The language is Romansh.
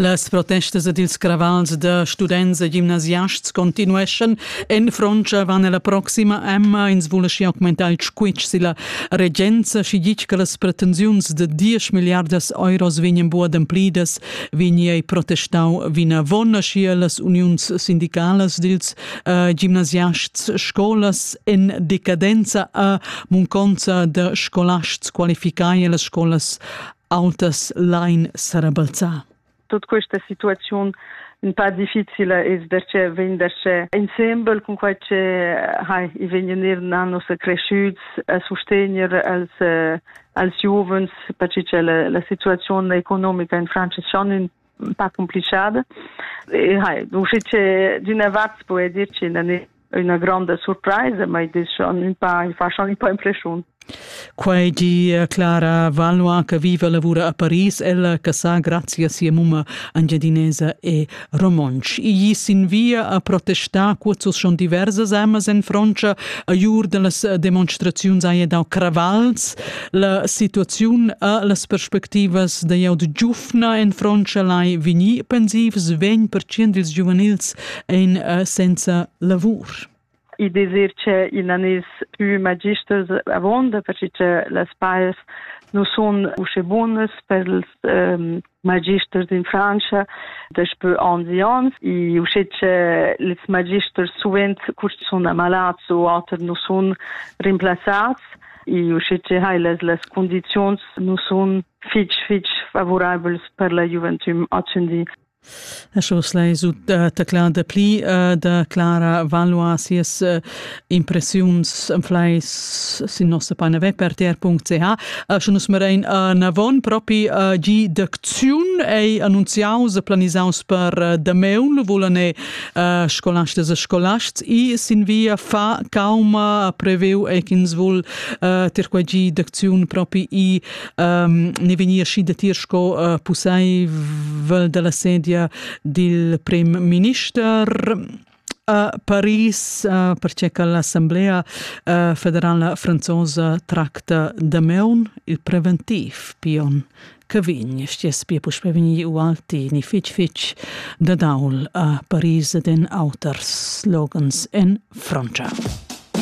Las protestas ed ils cravals da students e gimnasiasts continueschan. En Frontscha van la proxima Emma ins vulessi augmentar il squitsch silla regenza, schi gitg che las pretensiuns de 10 milliardas euros vegnan bu ademplidas, vegni ei protestau vinavon, schi las uniuns sindicalas dils uh, gimnasiasts scolas en decadenza a munconza de scolasts qualificai e las scolas autas lain sarabalzar. Tut questa situaziun in pa difficile es perche vegn darcheu insembel cun quai che hai i vegn eir na nossa creschüts a sustegner als als giuvens perche cha la, la situaziun economica in Francis schon in pas complichade e hai usci che d'una vart può dir che non è una grande surprise ma i diciamo un po' in fashion un po' impression Quei di eh, Clara Valois che vive e lavora a Paris, ella che sa grazie a sia mumma angiadinesa e romonsch. Gli sin via a protestare quozos schon diverses amas en Francia a jur de las demonstrazioni hai dau cravals. La situazione ha las perspectivas de jau de giuf Atna en frontscha lai vegnir pensivs vegn percient ils giuvenils en eh, senza lavur. I desir che in anis più magisters avonda, perché che las pais non sono usce buonas per els um, magisters in Francia daspö anni e anni e usce che les magisters suvent curs sun ammalats o oter non sun rimplazzats e uschè hai las, las condiziuns nu sun fich fich favorabels per la giuventüm ascendì. A Schorsley sut uh, taclar da pli uh, da Clara Valois sias uh, impressiuns am fleis sin nossa pagina web per ter.ch. Uh, sche nus merain uh, avon propi uh, gi d'acziun ei annunziaus e planisaus per uh, da meun, vulan e uh, scolasts e scolasts e sin via fa calma preveu e ch'ins vul uh, ter quei gi d'acziun propi e um, ne vegnir schi da tir sco uh, pusseivel dalla sedia dil prim minister a Paris, uh, perché che l'Assemblea uh, federala franzosa tracta da meun il preventiv pion che vegn, stiess pia puspè vegnir ualti ni fitg fitg da daul a Paris ed en auters slogans en Frantscha.